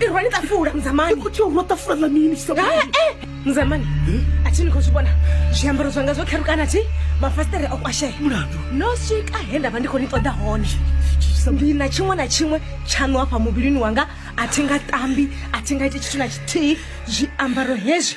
irwa ni ṱafula muzamani khou tea urwa ṱafula ḽa mini muzamani a thi ni khou zwi vhona zwiambaro zwanga zwo kherukana thi mafasiṱere o kwashea mulandu no swika he nda vha ndi khou ni ṱoḓa hone ndi na tshiṅwe na tshiṅwe tshaṋu hafha muvhilini wanga a thi nga tambi a thi nga iti tshithu na tshithihi zwiambaro hezwi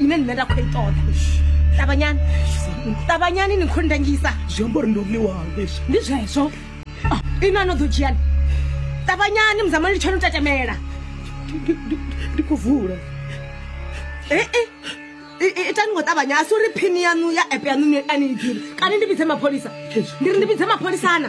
ine nṋe nda khou i ṱoḓa ṱavhanyani ṱavhanyani ni khou ndangisa zwi amba uri ndo ḽiwaho leswi ndi zwezwo Ah, ino ano ḓo dzhiani ṱavhanyani muzamani litsho no tatamela Ndi- ndi- ndi khou vula Eh, eh. I- i- itani ngo ṱavhanya a si uri phini yanu ya app yanu ni- a ni i ḓivhi kana ndi vhidze mapholisa ndi ri ndi vhidze mapholisana